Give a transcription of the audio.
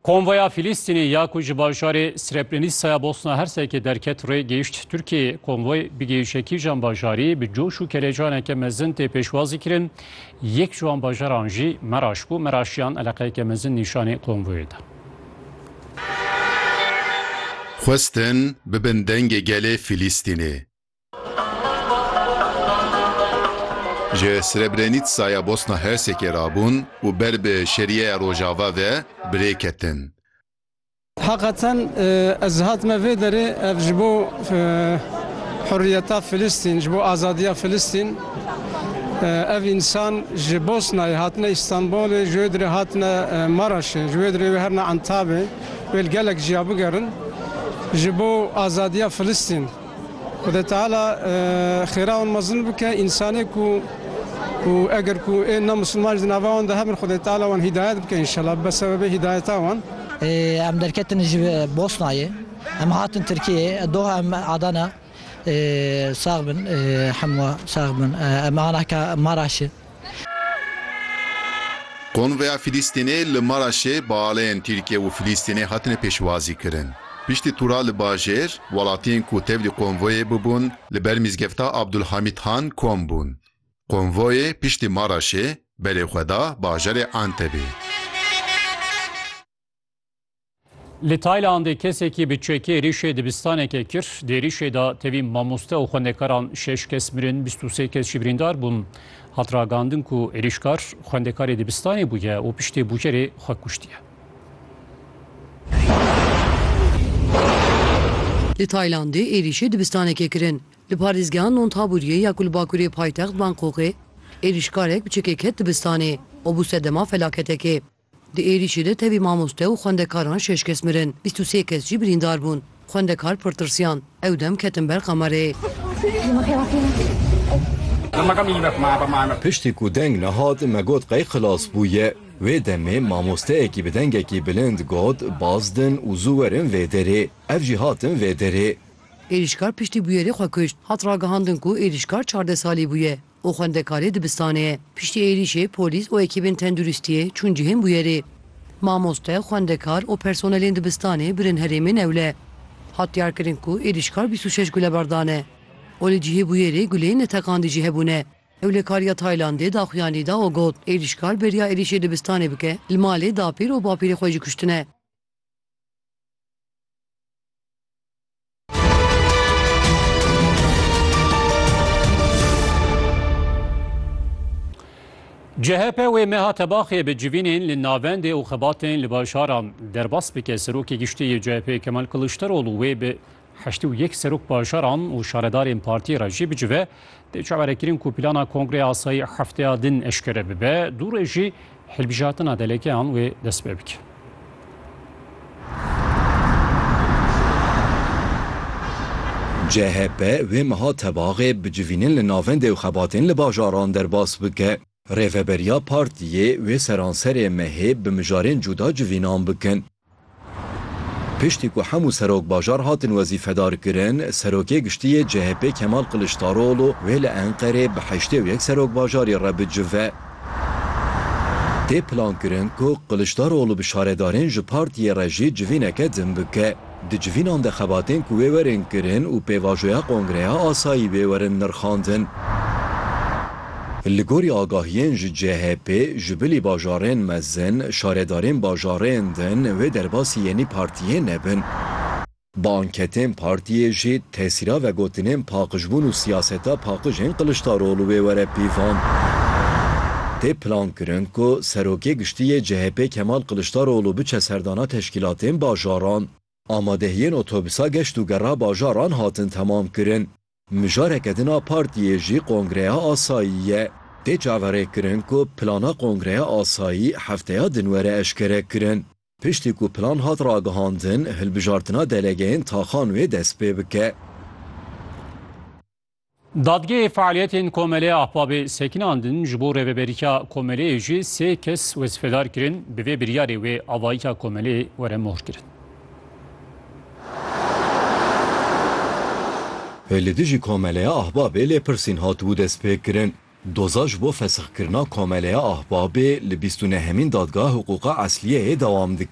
Konvoya Filîstînê ya ku ji bajarê Srebrenisaya Bosna Hersekê derket rê gehişt Tirkiyeyê. Konvoy bi gehişe kîjan bajarî bi coş û kelecaneke mezin tê pêşwazî kirin. Yek ji wan bajaran jî Meraş bû. Meraşiyan eleqeyeke mezin nîşanê konvoyê da. Xwestin bibin dengê gelê Filîstînê. Ji Srebrenîtsaya Bosna Hersekê re bûn û ber bi Şeriyeya Rojava ve bi rê ketin. Heqeten ez hatime vê derê ev ji bo huriyeta Filistîn, ji bo azadiya Filistîn. Ev însan ji Bosnayê hatine Îstanbulê, ji wê dirê hatine Maraşê, ji wê dirê wê herine Entabê, wê li gelek jiya bigerin ji bo azadiya Filistîn. Xwedê Teala xêra wan mezin bike, însanê ku ku eger ku ên ne misilman jî di nava wan de hebin Xwedê Teala wan hîdayet bike înşellah bibe sebebê hîdayeta wan. Em derketin ji Bosnayê em hatin Tirkiyeyê doh em Adana sax bin hemû sax bin em ana ka Maraşê. Konvoya Filîstînê li Maraşê bi aleyên Tirkiye û Filîstînê hatine pêşwazîkirin. Piştî tûra li bajêr, welatiyên ku tevlî konvoyê bûbûn li ber mîzgefta Abdulhamît Han kom bûn. Konvoyê piştî Maraşê berê xwe da bajarê Entebê. Li Taylandê kesekî bi çekê êrîşê dibistaneke kir. Di êrîşê de tevî mamoste û xwendekaran şeş kes mirin, bîst û sê kes jî birîndar bûn. Hat ragandin ku êrîşkar xwendekarê dibistanê bûye û piştê bûcerê xwe kuştiye. Li Taylandê êrîşê dibistanekê kirin li parêzgeha Nonthabûriyê ya ku li bakurê paytext Bangkokê. Êrîşkarek bi çekê ket dibistanê û bû sedema felaketekê. Di êrîşê de tevî mamoste û xwendekaran şeş kes mirin, bîst û sê kes jî birîndar bûn. Xwendekar pir tirsiyan. Ew dem ketin ber kamereyê. Piştî ku deng nehat me got qey xilas bûye. Wê demê mamosteyekî bi dengekî bilind got, baz din û zû werin vê derê. Ev jî hatin vê derê. Êrîşkar piştî bûyerê xwe kuşt. Hat ragihandin ku êrîşkar çardeh salî bûye. û xwendekarê dibistanê ye. Piştî êrîşê polîs û ekîbên tenduristiyê çûn cihên bûyerê. Mamoste, xwendekar û personelên dibistanê birin herêmên ewle. Hat diyarkirin ku êrîşkar bîst û şeş gulebar dane û li cihê bûyerê guleyên neteqandî jî hebûne. Ewlekariya Taylandê daxuyanî da û got, Êrîşkar beriya êrîşê dibistanê bike, li malê dapîr û bapîrê xwe jî kuştine. CHP wê meha tebaxê bi civînên li navendê û xebatên li bajaran derbas bike Serokê Giştî yê CHP Kemal Kiliçdaroglu wê bi heştê û yek serok bajaran û şaredarên partiyê re jî bicive tê çawerekirin ku plana Kongreya Asayî hefteya din eşkere bibe dû rê jî Hilbijartina delegeyan wê dest pê bike. CHP vê meha tevaxê bi civînin li navendê û xebatên li bajaran derbas bike. Rêveberiya partiyê wê seranserê mehê bi mijarên cuda civînan bikin. Piştî ku hemû serokbajar hatin wezîfedarkirin, Serokê Giştî yê CHP'ê Kemal Kiliçdaroglû wê li Enqerê bi heştê û yek serokbajarî re bicive. Tê plankirin ku Kiliçdaroglû bi şaredarên ji partiyê re jî civîneke din bike. Di civînan de xebatên ku wê werin kirin û pêvajoya kongreya asayî wê werin nirxandin. Li gorî agahiyên ji CHPê, ji bilî bajarên mezin, şaredarên bajarên din wê derbasî yenî partiyê nebin. Bi anketên partiyê jî tesîra vegotinên paqijbûn û siyaseta paqij ên Kiliçdaroglu wê were pîvan. Tê plankirin ku Serokê Giştî yê CHPê Kemal Kiliçdaroglu biçe serdana teşkîlatên bajaran. Amadehiyên otobisa geşt û gera bajaran hatin temamkirin. Mijareke din a partiyê jî Kongreya Asayî ye. Tê çaverêkirin ku plana Kongreya Asayî hefteya din were eşkerekirin. Piştî ku plan hat ragihandin, hilbijartina delegeyên taxan wê dest pê bike. Dadgehê fealiyetên Komelê Ahbabê sekinandin, ji bo rêveberiya Komeleyê jî sê kes wezîfedar kirin, bi vê biryarê wê avayîka Komelê were mohirkirin. Li dijî Komeleya Ahbabê lêpirsîn hatibû destpêkirin. Doza ji bo fesixkirina Komeleya Ahbabê li bîst û nehemîn Dadgeha Hiqûqa Esliyeyê dewam dike.